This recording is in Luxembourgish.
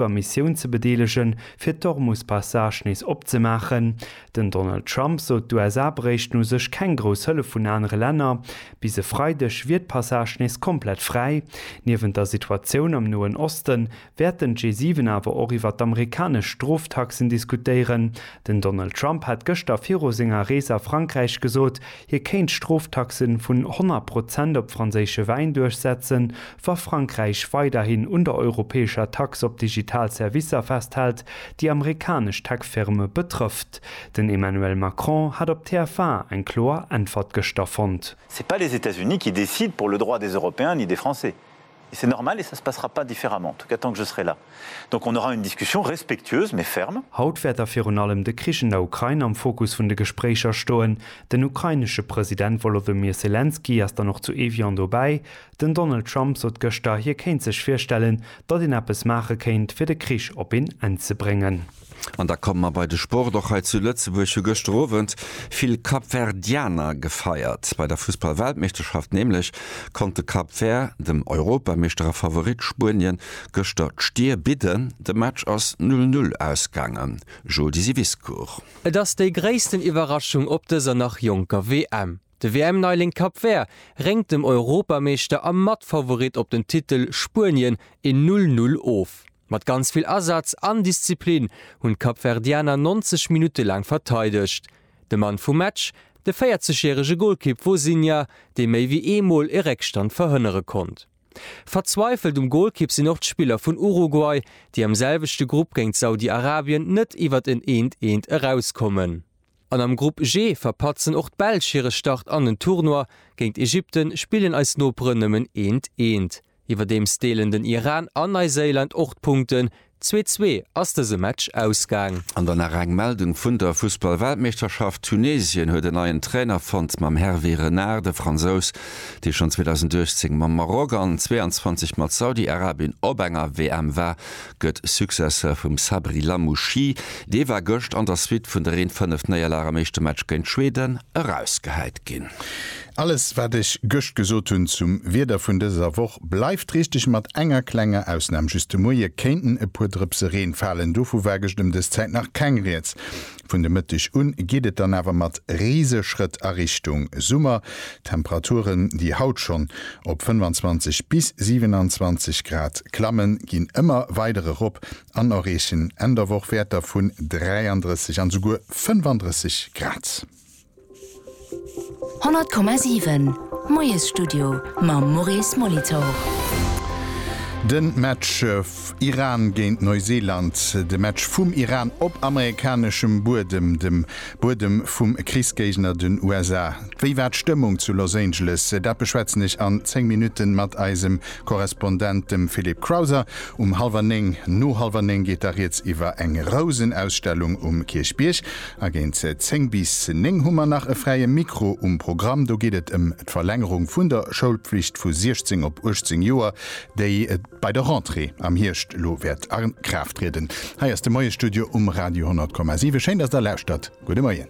der Missioun ze bedeelegen, fir d'Hormuz-Passage nees opzemaachen. Den Donald Trump sot, d'USA bréichten u sech keng grouss Hëllef vun anere Länner. Bis e Freideg wier d'Passage nees komplett fräi. Niewent der Situatioun am Noen Oste wäerten d'G7 awer och iwwer d'amerikanesch Stroftaxen diskutéieren. Den Donald Trump hat gëschter viru senger Rees a Frankräich gesot, Hie kéint Stroftaxe vun 100 Prozent op franséische Wäin duerchsetzen, wa Frankräich weiderhin un der europäescher Tax op digital Servicer festhält, déi amerikanesch Tech-Firme betrëfft. Den Emmanuel Macron hat op TF1 eng kloer Äntwert gëschter fonnt. C'est pas les États-Unis qui décident pour le droit des Européens ni des Français. Et c'est normal et ça se passera pas différemment, en tout cas tant que je serai là. Donc on aura une discussion respectueuse mais ferme. Haut wäert da virun allem de Krich an der Ukrain am Fokus vun de Gespréicher stoen. Den ukrainesche President Wolodymyr Selenskyj ass dann och zu Evian dobäi. Den Donald Trump sot gëschter, hie kéint sech virstellen, datt een eppes maache kéint, fir de Krich op een Enn ze bréngen. An da komme mer bei de Sport. Och hei zu Lëtzebuerg hu gëschter Owend vill Kapverdianer gefeiert. Bei der Fussball-Weltmeeschterschaft nämlech konnt de Cap Vert dem Europameeschter a Favorit Spuenien gëschter d'Stier bidden. De Match ass 0, 0 ausgaangen. Jodi Siviscourt. Et ass déi gréissten Iwwerraschung op dëser nach jonker WM. De WM-Neiling Cap Vert réngt dem Europameeschter a Matfavorit op den Titel Spuenien een 0, 0 of. Mat ganz vill Asaz an Disziplin hunn d'Kapverdianer 90 Minutte laang verteidegt. De Mann vum Match, de 40 järege Golkipp Vozinha, dee méi wéi ee Mol e Réckstand verhënnere konnt. Verzweifelt um Golkipp sinn och d'Spiller vun Uruguay, déi am selwechte Grupp géint Saudi-Arabien net iwwert en eent eent erauskommen. An am Grupp G verpatzen och d'Belsch hire Start an den Tournoi, géint Ägypten spillen eis Noperen nëmmen eent eent. Iwwerdeems deelen den Iran an Neiséiland och d'Punkten, zwee zwee ass dëse Match ausgaang. An dann nach eng Meldung vun der Fussballweltmeeschterschaft, Tunesien huet en neien Trainer fonnt, mam Hervé Renard. De Fransous, dee schonn 2018 mam Maroc an 22 mat Saudi-Arabien op enger WM war, gëtt Successeur vum Sabri Lamouchi. Dee war gëscht an der Suite vun der Reen 5 Néierlag am éischte Match géint Schweden erausgehäit ginn. Alles wat ech gëscht gesot hunn zum Wieder vun dëser Woch bleift richteg, mat enger klenger Ausnahm, just de Moie kéinten e puer Drëpse Reen falen, dovu war gëscht ëm dës Zäit nach keng Rieds. Vun de Mëtteg un geet et dann awer mat Riseschrëtt a Richtung Summer, d'Temperaturen déi haut schonn op 25 bis 27 Grad klammen, ginn ëmmer weider erop an erreechen Enn der Woch Wäerter vun 33 an esouguer 35 Grad. 100,7 Moiesstudio mam Maurice Molitor. Den Match Iran géint Neuseeland, de Match vum Iran op amerikaneschem Buedem, dem Buedem vum Krichsgéigner, den USA. Wéi war d'Stëmmung zu Los Angeles? Dat beschwätzen ech an 10 Minutten mat eisem Korrespondent, dem Philippe Crowther. Um hallwer 9, no hallwer 9 geet da riets iwwer eng Rousenausstellung um Kierchbierg. A géint 10 bis 9 hu mer nach e fräie Mikro um Programm. Do geet et ëm d'Verlängerung vun der Schoulpflicht vu 16 op 18 Joer, déi bei der Rentrée am Hierscht elo wäert a Kraaft trieden. Hei ass de Moie-Studio um Radio 10,7. Schéin, dass Der lauschtert. Gudde Moien.